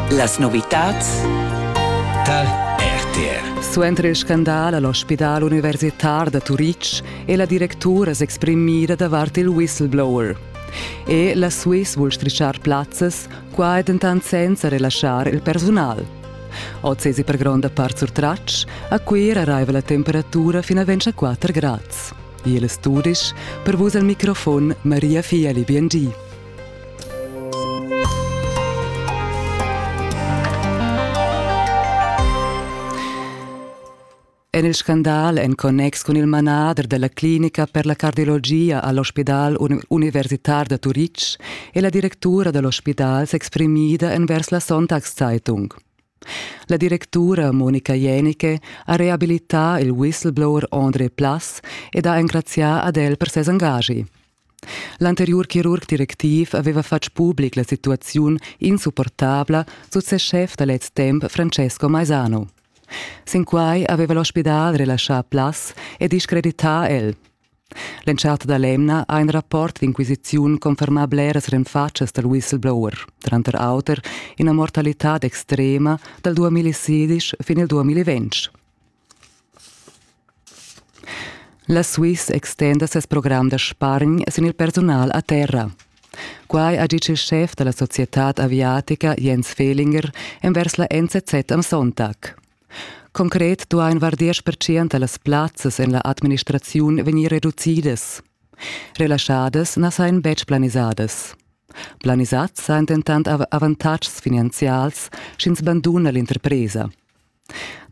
Las novitads tar RTR. Suenter il scandal all'ospidal universitar da Turitg è la directura s'exprimida davart il whistleblower. E la Swiss vul strichar plazzas, qua è dentant senza relaschar il persunal. Oz esi per gronda part surtratg, a Cuira raiva la temperatura fino a 24 grads. Iele Studisch, per vus al microfon Maria Fiali, BNG. En il scandal en connex cun il manader della clinica per la cardiologia all'ospedal universitar da Turitg è la directura dell'ospedal s'exprimida envers la Sonntagszeitung. La directura Monica Jenike ha reabilità il whistleblower André Plass ed ha engrazià ad el per ses engagi. L'anteriur chirurg directiv aveva fatg public la situaziun insupportabla sut ses schef da lez temp Francesco Maisano. Sin quai aveva l'ospidal relaschà plaz e discredità el. L'entschatta da l'emna ha in rapport d'inquisiziun confermà bleras renfatschas dal whistleblower, tranter auter ina mortalitad extrema dal 2016 fin il 2020. La Swiss extenda ses program da spargn sin il persunal a terra. Quai ha ditg il schef da la societad aviatica Jens Fehlinger envers la NZZ am Sonntag. Concret duain var 10 percent da las plazzas en la administraziun vegnir reducidas. Relaschadas na sajan betg planisadas. Planisads sajan dentant avantatgs finanzials, sch'ins banduna l'interpresa.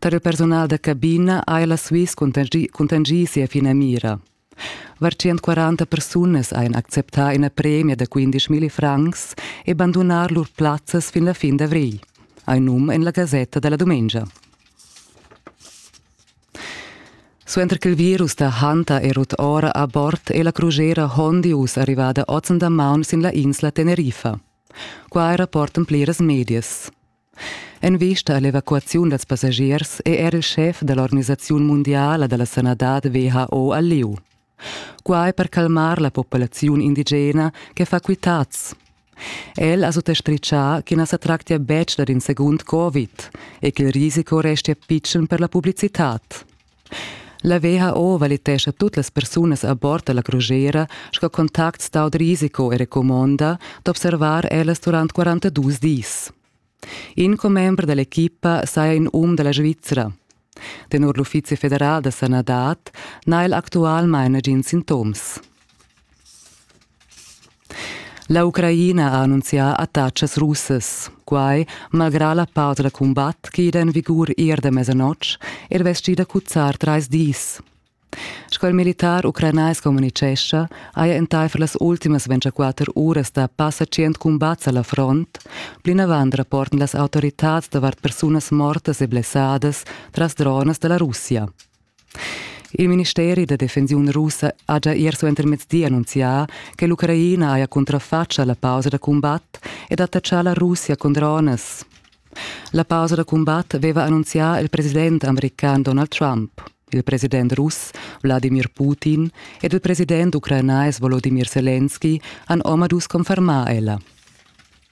Tar il persunal da cabina ha ella stuì cuntanscher sia finamira. Var 140 persunas hajan acceptà ina premia da 15.000 francs e bandunar lur plazzas fin la fin d'avrigl, ha num en la gasetta dalla dumengia. Suenter che il virus da Hanta è rut ora a bord è la crusera Hondi uss arrivada oz da maun sin la insla Tenerife. Qua rapportan pliras medias. En vista all'evacuaziun dals passagiers è er il schef da l'organisaziun mundiala da la sanadad WHO al lieu. Quai per calmar la populaziun indigena che fa quitads. El ha sottastritgà che na sa tractia betg dad in segund Covid e ch'il risico restia pitschen per la publicitad. La veha o valitescha tut las persunas a bord dalla crusera sco contact stau da risico e recumonda d'observar ellas durant 42 dis. In commember dall'equipa saja in um dalla Svizzera. Tenor l'Uffizi federal da sanadad n'ha el actualmain nagins sintoms. La Ucraina ha annunzià attacas russas. Quai malgrà la part da cumbat ch'era en vigur ier da mesanotg er vestgida cuzzar trais dis. Sco il militar ucranais communitgescha, haja entaifer las ultimas 24 uras da passa 100 cumbats a la front plinavant rapportan las autoritads davart persunas mortas e blessadas tras dronas da la Russia. Il ministeri da defensiun russa ha già ier suentermezdi annunzià che l'Ucraina haja cuntrafatg la pausa da cumbat ed attachà la Russia cun dronas. La pausa da cumbat aveva annunzià il president american Donald Trump, il president russ Wladimir Putin ed il president ucranais Volodimir Selenski han omadus confermà ella.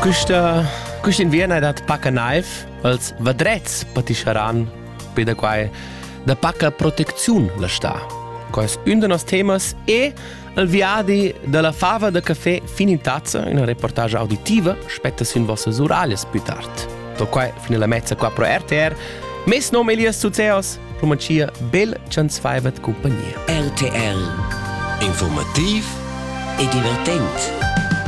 Questa, questa in Vienna dat pacca naiv, els vadrets patischaran pe da quai da pacca protecziun la sta. Quais un da nos temas è il viadi dalla fava da café Finitazza, una reportage auditiva spetta sin vossas uralias più tard. Da qua fin la mezza qua pro RTR. Mes nom è Elias Zuzeos, Romancia bel ch'ans faivat compagnia. RTR. Informativ e divertent.